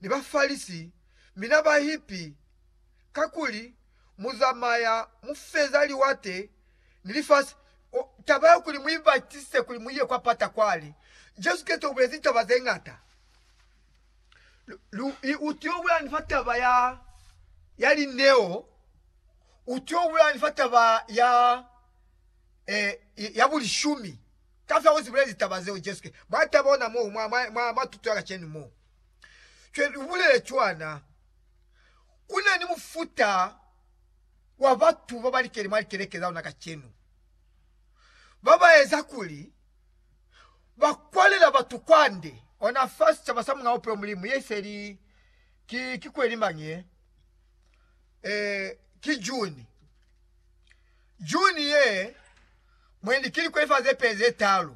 ni Bafalisi, mi na ba hipi, kakuli mu zamaya mu feza liwate ni lifasi. Taba ya kuli mu ibatise kuli mu ye kwa pata kwale, Jesu Kreste ubulezi taba ze ngata. Lu, u tio bulani fa taba ya, ya lineo, u tio bulani fa taba ya, eh, ya bulishumi. Kafya uzibulezi taba zeo Jesu Kreste. Mwa taba ona mo, mwa, mwa, mwa, mwa tuto ya kacenu mo. Fye lubulele cwana. Kuna ni mufuta wa batu babalikeni mwa likeleke za luna kacenu, babaeza kuli bakwalela batu kwande. Ona fa sicaba sa Muñ'a Bupilo Mulimu, ye iseli ki, ki kweli mañi ye? Eh, ki June. June ye, mwendi, ki likweli fa zepeli zetaalu.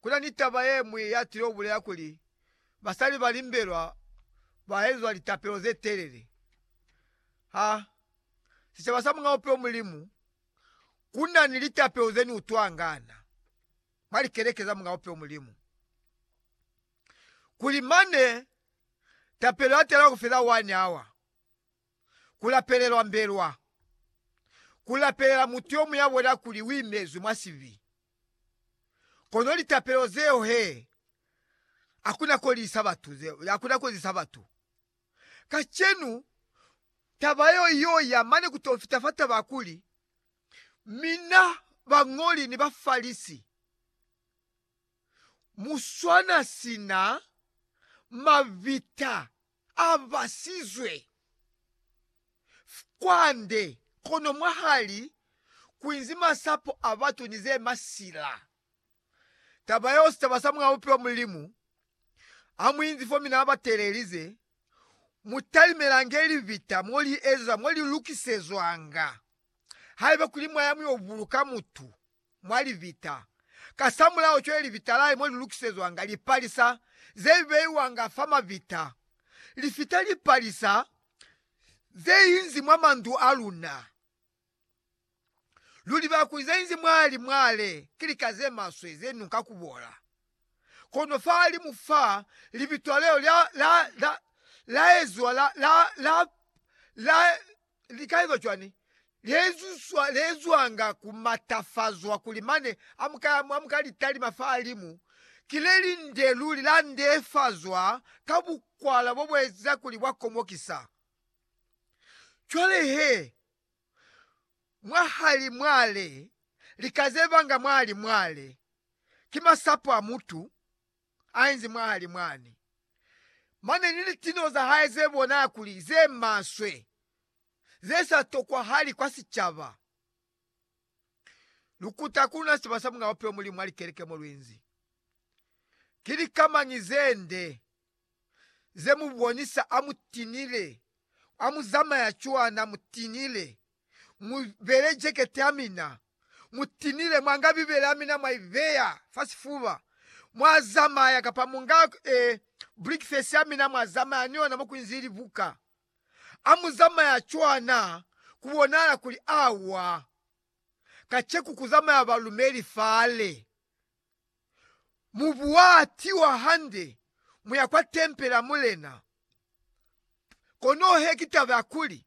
Ku na ni taba ye ñwi ya tile ku bulela kuli, Basali ba limbelwa ba ezwa litapelo ze telele. Ha sicaba sa Mulena wa Bupilo Mulimu, ku na ni litapelo ze ni utwangana mwa likeleke za Mulena wa Bupilo Mulimu, kuli mane tapelo ya tela ku feza one hour. ku lapelelwa mbelwa, ku lapelela mutu yo muñ'a bona kuli u imezwi mwa sibi. Kono litapelo zeo he a ku na kolisa batu, a ku na kolisa batu. Kacenu, taba yeo i y'o ya mane ku t'o fita fa taba ya kuli, Mina bañoli ni Bafalisi, mu swana sina mabita! a basizwe kwande, kono mwahali kwinzi masapo a batu ni ze masila. Taba yeo sicaba sa muaupi wa Mulimu ha mu inzi fo mi na ba teelelize, Mu talimelange libita mo li ezwa, mo li lukisezwanga, haiba kuli mwa ya mu yo buluka mutu. mwa libita. Kasamulaho cwale libita lahe mo li lukisezwanga lipalisa ze beiwanga fa mabita, li fita lipalisa ze inzi mwa mandu a luna. Luli bakuli ze inzi mwa li mwale ki lika ze maswe ze nunka ku bola. Kono fahalimu fa, libitwa leo la, la, la, la ezwa, la, la, la, la, Likaizo cwani leezwanga ku matafazwa kuli mane amuka litalima fahalimu? Ki lelinde luli la ndehefazwa ka bukwala bo bueza kuli bwa komokisa. Cwale he, mwahali mwale, lika zevanga mwahali mwale, ki masapo a mutu. ainzi mwahali mwani, mane ni litino zahae zebonala kuli zemaswe, zesa tokwahali kwa sicaba. Lukuta ku luna sicaba sa Mulena Bupilo Mulimu mwa likeleke mo luinzi. Ki lika mañi zende zemubonisa amutinile, amuzamaya cwana mutinile? Mu bele jekete ya mina, mu tinile mwanga Bibele ya mina mwa i beya fa sifuba, mwa zamaya, kapa mu nga e, brikifesi ya mina mwa zamaya ni yona mo ku nzi libuka. A mu zamaya cwana? Ku bonahala kuli awa. Kaceku ku zamaya balumeli fale. Mubu wa tiwa hande mu ya kwa tempele ya Mulena. Kono he ki taba ya kuli,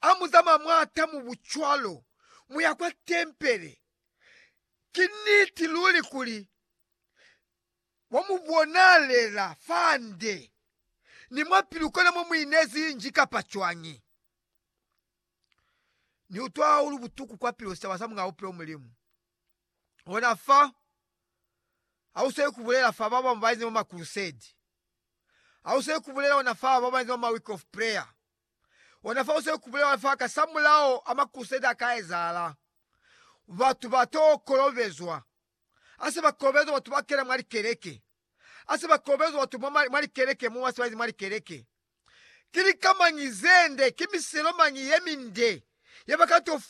ha mu zamaya mwa ta mubu cwalo mu ya kwa tempele, ki niti luli kuli wa mu bonalela fande ni mwa pilu kona mo mu inezi nji kapa cwañi? Ni utwa hahulu butuku kwa pilu sitaba sa Mulao Bupilo Mulimu. Ona fa, ha u sweli ku bulela fa ba bañwi ba inzi mwa makurusedi. Ha u sweli ku bulela ona fa ba ba inzi mwa ma Week of Prayer. Ona fa u sweli ku bulela ona fa kasamulaho a makurusedi a ka ezahala. Batu ba t'o kolobezwa. Ha se ba kolobezwa, batu ba kena mwa likeleke. Ha se ba kolobezwa, batu mwa ma, mwa likeleke mo ba se ba inzi mwa likeleke. Ki lika mañi ze nde, ki miselo mañi ye minde ye ba ka t'o fumana?